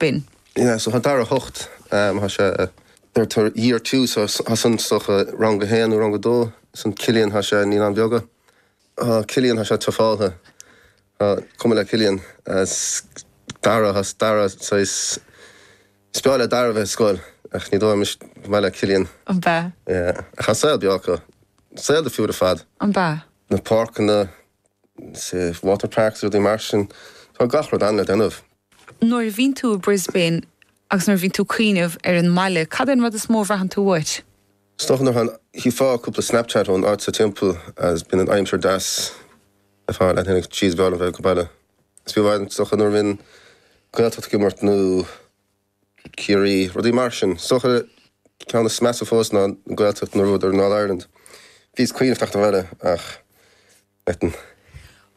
binn. So thá Dara hocht, thá sé ar tar year two so thá san is dócha rang a haon nó rang a dó san Cillian thá sé naíonáin bheaga. Thá Cillian thá sé tráfálta. Is cuma le Cillian. Dara thá Dara saghas is breá le Dara bheith ag scoil ach ní dóigh an maith le Cillian. An b'ea? Yeah. Ach thá saol beo acu. Saol difriúil ar fad. An b'ea? Na páirceanna. say, water parks, rudaí mar sin. Tá gach rud ann le déanamh. Nuair a bhíonn tú i Brisbane agus nuair a bhíonn tú ag cuimhneamh ar an mbaile, cad é an rud is mó a bhraitheann tú uait? Is dócha nuair a chífeá cúpla Snapchat ón áit seo timpeall agus bíonn an aimsir deas ar fad, déarfainn ah, jeez, b'fhearr liom bheith ag an baile. Is yeah, is dócha nuair a bhíonn Gaeltacht ag imirt nó. Ciarraí, rudaí mar sin. Is dócha ceann is measa fós ná an Ghaeltacht nuair a bhuadar an All Ireland. Bhíos ag cuimhneamh teacht abhaile ach ansan.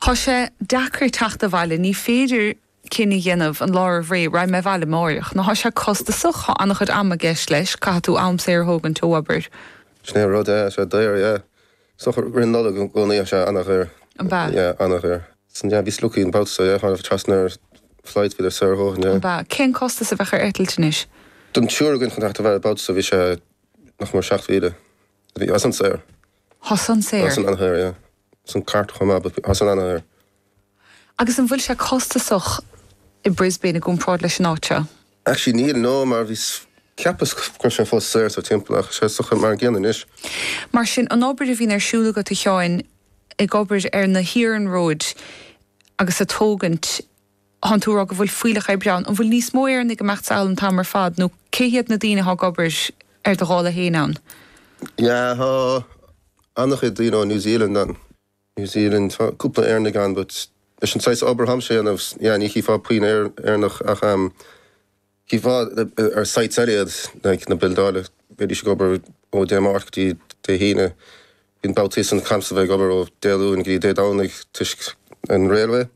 Thá sé deacair teacht abhaile, ní féidir cinneadh a dhéanamh an lá roimh ré, raghaidh mé abhaile amáireach, no thá sé costasach, thá an-chuid ama i gceist leis, caithfidh tú am saor a thógaint ó obair. Sin é an rud, yeah, tá sé daor, yeah. Is dócha i rith na Nollag i gcónaí tá sé an-dhaor. An bea? Yeah, an-dhaor. Sin yeah, bhí sluacaí in babhta so yeah, tháinig trasna ar flight, mhíle euro dó sin yeah. An bea? Cén costas a bheadh ar eitilt anois? Don triúr againn chun teacht abhaile an babhta so bhí sé nach mór seacht mhíle. Bhí, tá san an-shaor. Thosaigh an saor? Tá san an-dhaor yeah. Tá san ceart go maith but tá san an-dhaor. Agus an bhfuil sé costasach i Brisbane i gcomparáid leis an áit seo? Actually níl, no, mar bhí, cheapas go raibh sé fós saor anso timpeall ach is dócha mar an gcéanna anois. Mar sin, an obair a bhíonn ar siúl agat a Sheáin, ag obair ar na hiarnróid agus ag tógaint, thánn tú a rá go bhfuil fuílleach oibre ann, an bhfuil níos mó Éireannaigh ag imeacht sall an t-am ar fad nó cé hiad na daoine atá ag obair ar do dhála fhéin ann? Yeah, tá ana-chuid daoine ó New Zealand ann. New Zealand, tá cúpla Éireannaigh ann but leis an saghas obair atáimse a dhéanamh yeah ní chífeá puinn Éireannach ach em chífeá ar sites eile iad like na bildeálaithe bídís ag obair ó Dé Máirt go dtí Dé hAoine bíonn babhtaí go mbímse a bheith ag obair ó Dé Luain go dtí Dé Domhnaigh toisc an railway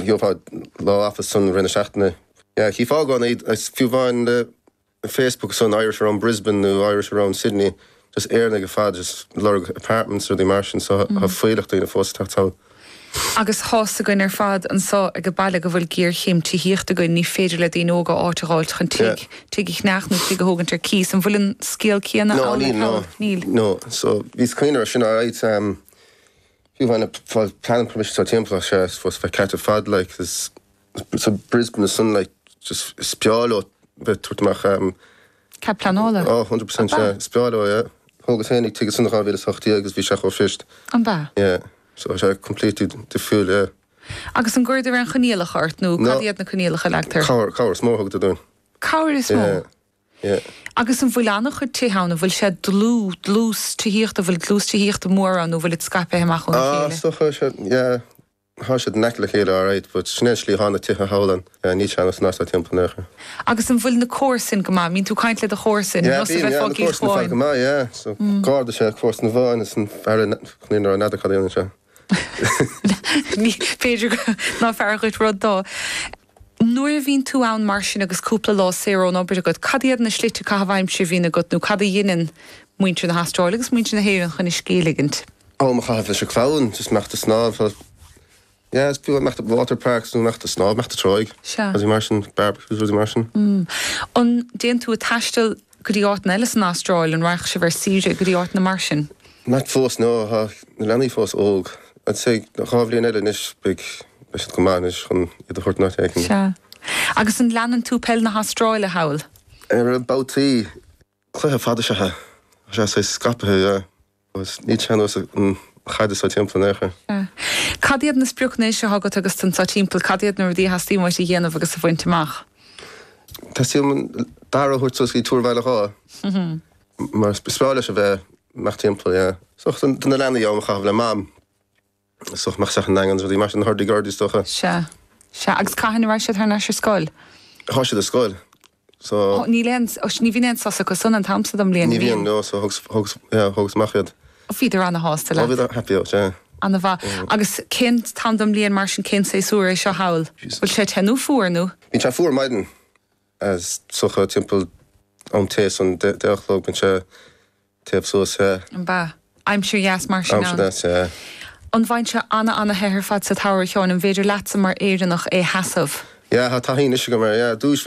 gheofá lá off san i rith na seachtaine yeah chífeá go fiú amháin le Facebook san Irish around Brisbane nó Irish around Sydney just Éireannaigh ar fad just lorg apartments rudaí mar sin so tá fuílleach daoine fós teacht ann. Agus thá a fhios againn ar fad anso ag a' baile go bhfuil géarchéim tithíochta againn ní féidir le daoine óga áit a dh'fháilt chun tigh, tigh a cheannach nó tigh a thógaint ar cíos. An bhfuil an scéal céanna ann ar fad? No níl no, no no so bhíos ag caint air sin alright fiú amháin a' fáil planning permission anso timpeall ach sé fós bheith ceart ar fad like there's. So Brisbane ansan like just is breá leo bheith tabhairt amach a. Cead pleanála? Oh, hundred percent yeah. Is breá leo yeah. Thógas féinig tigh ansan 2008 yeah agus bhí sé chomh fuirist. An b'ea? Yeah. So tá sé completely difriúil yeah. Agus an gcuireadar aon choinníollacha ort nó No. cad iad na coinníollacha a leagtar? Cabhair, cabhair is mó a thugadar dúinn. Cabhair is mó? Yeah. Yeah. Agus an bhfuil an-chuid tithe ann, an bhfuil sé dlúth, dlús tithíochta, an bhfuil dlús tithíochta mór ann nó an bhfuil siad scaipthe amach óna Ah, chéile? so chuir sé, yeah. Thá siad in aice le chéile alright but sin é an slí thá na tithe thall ann níl sé ar nós anso timpeall in aon chor. Agus an bhfuil na comharsain go maith? Bíonn tú ag caint le do chomharsain, Yeah, bím, yeah, na comharsain ar fad go maith, yeah. So Garda is ea comharsan amháin is an fear eile n'fheadar cad a dhéanann sé. B'fhéidir ná fearra dhuit rud do. Nuair a bhíonn tú ann mar sin agus cúpla lá saor ón obair agat, cad iad na slite caitheamh aimsire a bhíonn agat nó cad a dheineann muintir na hAstráile agus muintir na hÉireann chun a scíth a ligint? am a chaitheamh leis an chlann, just imeacht a' snámh for yeah is fiú imeacht a' water parks nó imeacht a' snámh, imeacht a' tráigh, Sea. rudaí mar sin, barbecues, rudaí mar sin. Mm. An dtéann tú a' taisteal go dtí áiteanna eile san Astráil, an raghadh sibh ar saoire go dtí áiteanna mar sin? Not fós no, tá na leanaí fós óg. I'd say dhá bhliain eile anois beidh, beidh siad go maith anois chun iad a thabhairt in áit éicint. Sea. Agus an leanann tú peil na hAstráile thall? Á, babhtaí. cluiche fada is ea é. Tá sé saghas scaipithe yeah agus níl sé ar nós an chaid anso timpeall in aon chor. Cad iad na spriocanna anois atá agat agus tú anso timpeall? Cad iad na rudaí a theastaíonn uait a dhéanamh agus a bhaint amach? Teastaíonn uaim Dara a thabhairt suas go dtí Túr Bhaile Dháith mar is breá leis a bheith amach timpeall, yeah. Is dócha do na leanaí am a chaitheamh le Mam. Is dócha imeacht isteach 'on Daingean is rudaí mar sin thar Dig Aird is dócha. Sea. Sea. Agus cathain a raghaidh siad thar n-ais ar scoil? Thá siad ar scoil so. Ó níl aon, ní bhíonn aon sos acu ansan an t-am so don mbliain, ní bhíonn? Ní bhíonn, no, so thugas, thugas, yeah, thugas amach iad. Ó bhíodar ana-shásta leat? Ó bhíodar happy out, yeah. Ana-mhaith. Agus cén t-am don mbliain mar sin, cén saesúr é seo thall? Bhfuil sé te nó fuar nó? Bíonn sé fuar ar maidin is dócha timpeall am tar éis an deich a chlog bíonn sé. Téamh suas then. Mba. Aimsir dheas mar sin Aimsir ann. dheas, yeah. An bhfaigheann sé ana-ana-the ar fad sa tsamhradh, a Sheáin? An bhféidir leatsa mar Éireannach é a sheasamh? Yeah, tá taithí anois agam air, yeah. Dúish bhí